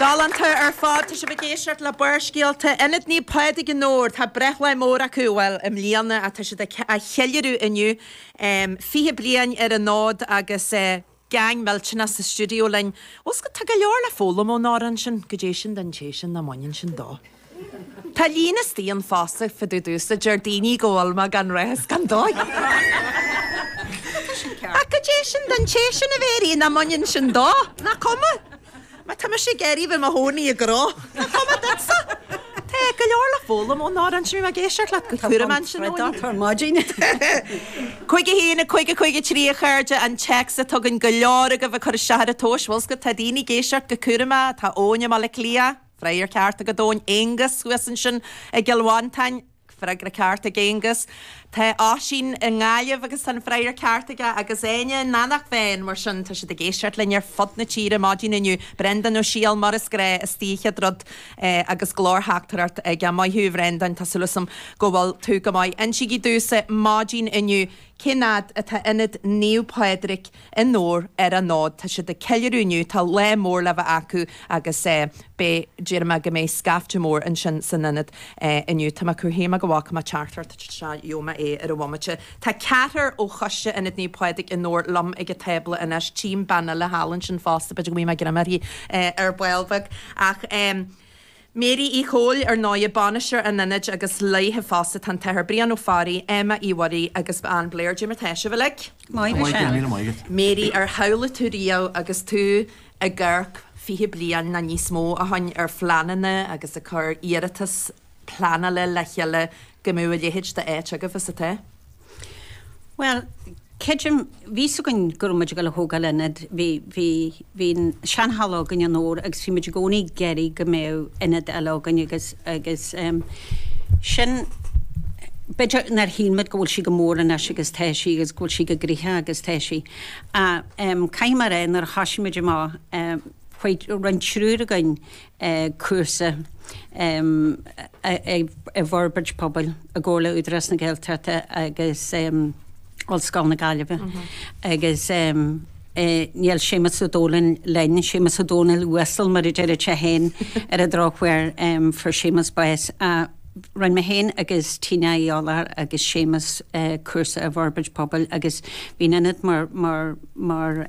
Galánta ar fad. Tá sibh ag éisteacht le Barrscéalta, Ionad Naomh Pádraig i nDobhar. Tá breithlá mór acu, bhuel, i mbliana ach tá siad ag ceiliúradh inniu. Fiche bliain ar an fhód agus gang millteanach sa stiúideo linn. Bhfuil 's agat, tá go leor le foghlaim ón amhrán sin. Goidé sin don té sin nach mbaineann sin dó? Tá líne d'aon phost ag fadú domhsa, deir daoine go bhfuil mé gan rath is gan dóigh. Tá sé sin ceart. Ach cad é sin don té sin a déarfainn nach mbaineann sin dó? Nach cuma? Má tá mise ag iarraidh bheith i mo chónaí i gcró, nach cuma duitsa? Tá go leor le foghlaim ón amhrán sin ag éisteacht leis go cúramach ansin ó dheas. Tá maidin. 51 50 53 a chairde, an téacs atá againn, go leor agaibh ag cur isteach ar an tomhas, bhfuil 's agat, tá daoine ag éisteacht go cúramach, tá Eoin i mBaile Átha Cliath, Freagra ceart ag Eoin. Aonghus thuas ansin i gCill Mhantáin. Freagra ceart ag Aonghus. Tá Oisín i nGaillimh agus tá an freagra ceart aige agus Áine in Eanach Mheáin. Mar sin, tá siad ag éisteacht linn ar fud na tíre maidin inniu. Breandán Ó Siadhail, mar is gnáth, istigh chéad rud agus glórtheachtaireacht aige. Maith thú, a Bhreandáin, tá súil 's agam go bhfuil tú go maith. Insígí domhsa maidin inniu cén fhad atá Ionad Naomh Pádraig. i nDobhar ar an fhód. Tá siad ag ceiliúradh inniu, tá lá mór le bheith acu agus beidh, déarfainn go mbeidh scaifte mór ansin san Ionad inniu. Tá mé ag déanamh go bhfaca mé teachtaireacht anseo, gheobhaidh mé é ar an bhomaite. Tá ceathrar ó choiste Ionad Naomh Pádraig i nDobhar liom ag an tábla anois, tchím bean eile thall ansin fosta, b'fhéidir go mbeidh mé ag dréim uirthi ar ball beag ach. Mary Uí Chomhail, ar ndóigh, bainisteoir an Ionaid agus léithi fosta tá an t-Athair Brian Ó Fearraigh, Emma Uí Mhuirí agus Ann Blair. Goidé mar tá sibh uilig. Maith go séan. Míle maith agat. Mary, Ar shamhlaigh tú riamh agus tú ag amharc fiche bliain ná níos mó a shoin ar phleananna agus ag cur iarratas pleanála le chéile go mbeadh a leithéid d'áit agaibh is atá? Bhuel, creidim, bhí a fhios againn go raibh muid ag dul a thógáil ionad, bhí, bhí, bhí an seanhalla againn i nDobhar agus bhí muid i gcónaí ag iarraidh go mbeadh ionad eile againn agus, agus ehm sin, b'fhéidir nár shíl muid go bhfuil sí chomh mór anois agus tá sí agus go bhfuil sí chomh gnoitheach agus tá sí. Ach ehm caithfidh mé a rá nuair a thosaigh muid amach, chuaigh, rinne triúr againn, eh cúrsa i bhforbairt pobail i gcomhar le Údarás na Gaeltachta agus Ollscoil na Gaillimhe agus níl Séamus Ó Dónaill linn, Séamus Ó Dónaill uasal mar a deireadh sé fhéin ar an drochuair fuair Séamus bás. Rinne mé fhéin agus Tina Uí Eoláir agus Séamus cúrsa i bhforbairt pobail agus bhí an t-ionad mar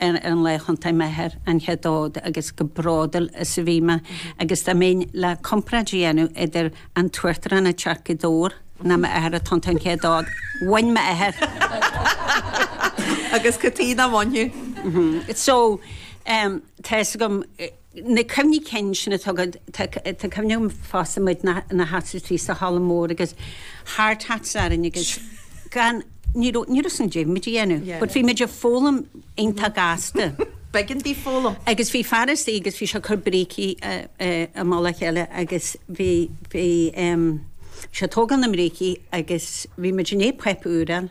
ar an lá a thiontaigh m'athair an chéad fhód agus chomh bródúil is a bhí mé agus dá mbeinn le comparáid a dhéanamh idir an tUachtarán ag teacht go Dobhar ná m'athair ag tiontú an chéad fhód, bhain m'athair! Agus cad é nach mbainfeadh? So, tá fhios agam. Na cuimhní cinn sin atá agat, tá cuimhne agam fosta muid ina seasamh istigh sa halla mór agus thart thart orainn agus gan, ní raibh, ní raibh a fhios againn caidé a bhí muid a dhéanamh, but bhí muid ag foghlaim iontach gasta. B'éigean dúinn foghlaim. Agus bhí fearas aige agus bhí sé ag cur brící i mullach a chéile agus bhí, bhí sé ag tógáil na mbrící agus bhí muid in aon phoip úr ann.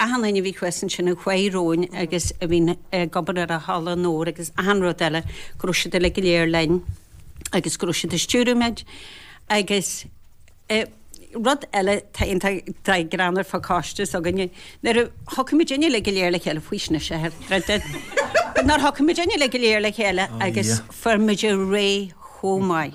Achan duine a bhí thuas ansin in Faoi Rúin agus a bhíonn ag obair ar an halla mór agus achan rud eile, go raibh siad uile go léir linn agus go raibh siad ag stiúradh muid. Agus rud eile, tá an-ghreann ar an choiste s'againne, nuair a thiocfaidh muid uile go léir le chéile, faoistin is ea é, nuair a thiocfaidh muid uile go léir le chéile agus fuair muid ar aghaidh chomh maith.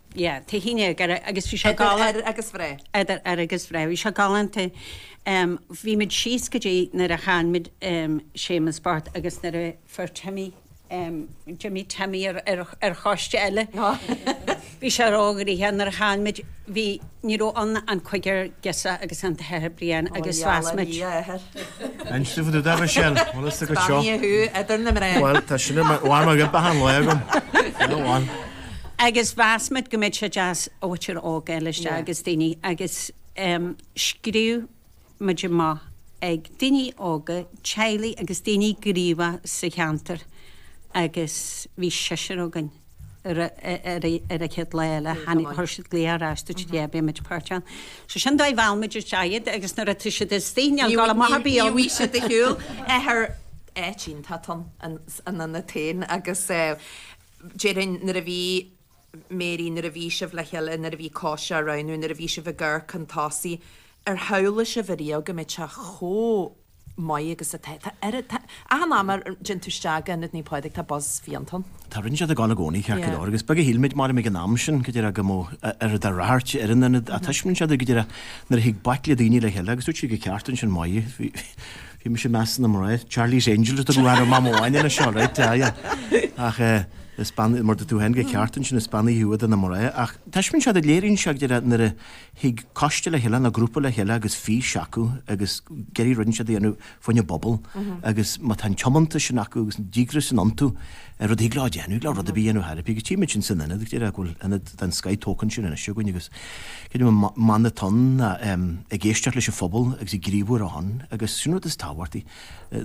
yeah, té shín aige ar, agus bhí sé galán. Idir ar agus bhre. Idir ar agus bhre. Bhí sé galánta. Um, bhí muid síos go dtí nuair a chaill muid um, Séamus Bart agus nuair a fuair Timmy um, Jimmy Timmy ar, ar, ar choiste eile. Bhí sé ina chrá croí nuair a chaill muid bhí Ní raibh ann ach cúigear girseach agus an tAthair Brian agus mheas muid. An sibh do da Michelle? Bhfuil fhios agat seo? Beannaithe thú idir na mná. Bhuel, tá sin i bhfad mar ghrib achan lá agam. Go bhfan. Agus mheas muid go mbeadh sé deas b'fhéidir óige a fháil isteach agus daoine agus scríobh muid amach ag daoine óga, teaghlaigh agus daoine gníomhacha sa cheantar agus bhí seisear againn ar an chéad lá eile, tháinig, chuir siad glaoch ar ais, dúirt, yeah, beidh muid páirteach ann. So sin an dóigh ar mheall muid isteach iad agus nuair atá siad istigh, níl gabháil amach ar bith ann. Ní bhíonn siad ag siúl thar áit iontach an anna féin agus déarfainn nuair a bhí, Mary, Nuair a bhí sibh le chéile, nuair a bhí coiste á roghnú, nuair a bhí sibh ag amharc chun tosaigh, ar shamhlaigh sibh ariamh go mbeadh sé chomh maith agus atá? Tá oiread, tá, achan am a dtéann tú isteach go Ionad Naomh Pádraig tá buzz fiáin ann. Tá, rud inteacht ag gabháil i gcónaí, ceart go Yeah. leor, agus beag a shíl muid, Mary, ag an am sin, go díreach go mbeadh oiread de rath ar an Ionad, ach taispeánann sé duit go díreach, nuair a thig baicle daoine le chéile, agus dúirt sí go ceart ansin, maith, bhí, bhí, Bhí mise i measc na mná ar Charlie's Angels a tugadh orm am amháin anois, all right, yeah, yeah. Ach eh is bean, mar a deir tú féin go ceart ansin, is beannaithe thú idir na mná. Ach taispeánann sé duit, léiríonn sé go díreach nuair a thig coiste le chéile nó grúpa le chéile agus fís acu agus ag iarraidh rud inteacht a dhéanamh fá choinne an phobail agus má tá an tiomantas sin acu agus an díograis sin iontu, ar rud a thig leo a dhéanamh, le rud ar bith a dhéanamh thar a bith, agus tchím muid sin san Ionad, ag déileáil go bhfuil Ionad den scoth tógtha ansin anois againn agus creidim an mana atá ann ná ag éisteacht leis an phobal agus ag gníomhú ar a shon agus sin an rud is tábhachtaí,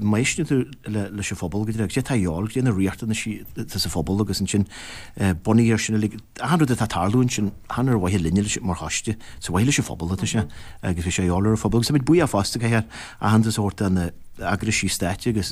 má éisteann tú leis an phobal, go dtí agus é atá fháil go dtí na riachtanaisí atá sa phobal agus ansin bunaithe ar sin uilig, achan rud atá ag tarlú ansin, chan ar mhaithe linne é mar choiste, is ar mhaithe leis an phobal atá sé agus bhí sé fháil ar an phobal agus táimid buíoch fosta do achan sórt eagraisí stáit agus.